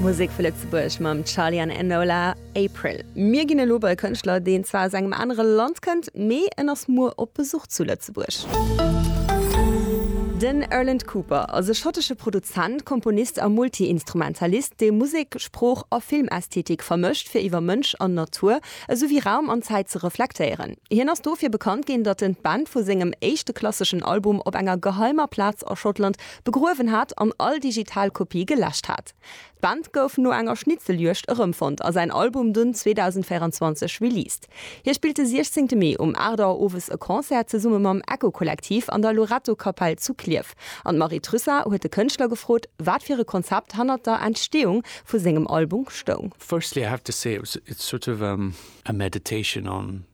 Musek vu Lëtzebuerg mam Charly an Enola, April. Mir ginn elo bei e Kënschtler, deen zwar aus engem anere Land kënnt, mee en ass muer op Besuch zu Lëtzebuerg. Den Erland Cooper ass e schottesche Produzent, Komponist a Multi-Instrumentalist, dee Musek, Sprooch a Filmästhetik vermëscht, fir iwwer Mënsch an Natur, esou wéi Raum an Zäit ze reflektéieren. Hien ass dofir bekannt ginn, datt en d'Band vu sengem éischte klasseschen Album op enger geheimer Plaz a Schottland begruewen hat an all digital Kopie geläscht hat. D'Band gouf no enger Schnitzeljuegd erëmfonnt a säin Album dunn 2024 released. Hie spillt de 16 Mee um 8 Auer owes e Concert zesumme mam Echo-Kollektiv an der Loretto-Kapell zu Klierf an d'Marie Trussa huet de Kënschtler gefrot, wat fir e Konzept hannert der Entsteeung vu sengem Album stoung. Firstly I have to say it was a sort of a meditation on.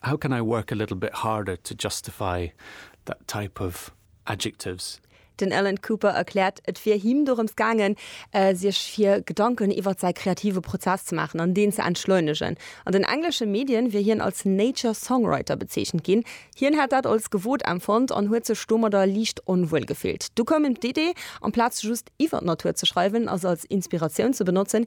How can I work a little bit harder to justify that type of adjectives? Den Alan Cooper erkläert, et wier him dorëms gaangen, sech fir Gedanken iwwer säi kreative Prozess ze maachen an deen ze entschleunegen. An den englesche Medien wier hien als nature songwriter bezeechent ginn. Hien hätt dat als gewot empfonnt an huet sech domadder liicht onwuel gefillt. Du koum him d'Idee, amplaz just iwwer d'Natur ze schreiwen a se als Inspiratioun ze benotzen,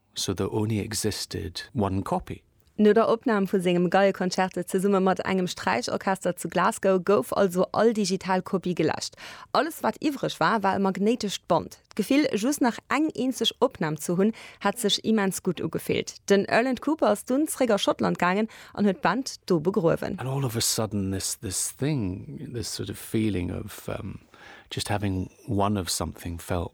So there only existed one copy. No der Opnam vu sengem Geieconcerto zesumme mat engem Sträichorchester zu Glasgow gouf also all digital Kopie geläscht. Alles wat iwwreg war, war e magnéitescht Band. D'Gefill, just nach eng eenzeg Opnam ze hunn, hat sech immens gutt ugefillt. Den Erland Cooper ass dunn zréck a Schottland gaangen an huet d'Band do begruewen. And all of a sudden this this thing, this sort of feeling of just having one of something felt.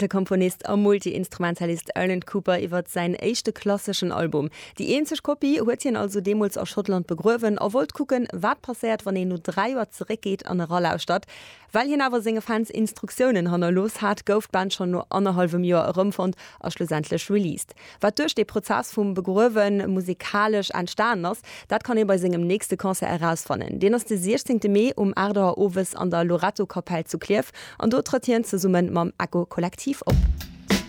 De Komponist a Multi-Instrumentalist Erlen Cooper iwwer säin éischte klasseschen Album. Déi eenzeg Kopie huet hien also deemools a Schottland begruewen a wollt kucken, wat passéiert, wann een no dräi Joer zeréckgeet an eralauschtert. Well hien awer senge Fans Instruktiounen hannerlooss hat, gouf d'Band schonn no annerhallwem Joer erëmfonnt a schlussendlech released. Wat duerch dee Prozess vum Begruewen musikalesch entstanen ass, dat kann ee bei sengem nächste Concert erausfannen. Deen ass de 16 Mee um 8 Auer owes an der Lorettokapell zu Klierf an do trëtt hien zesumme mam Echo Kollektiv op.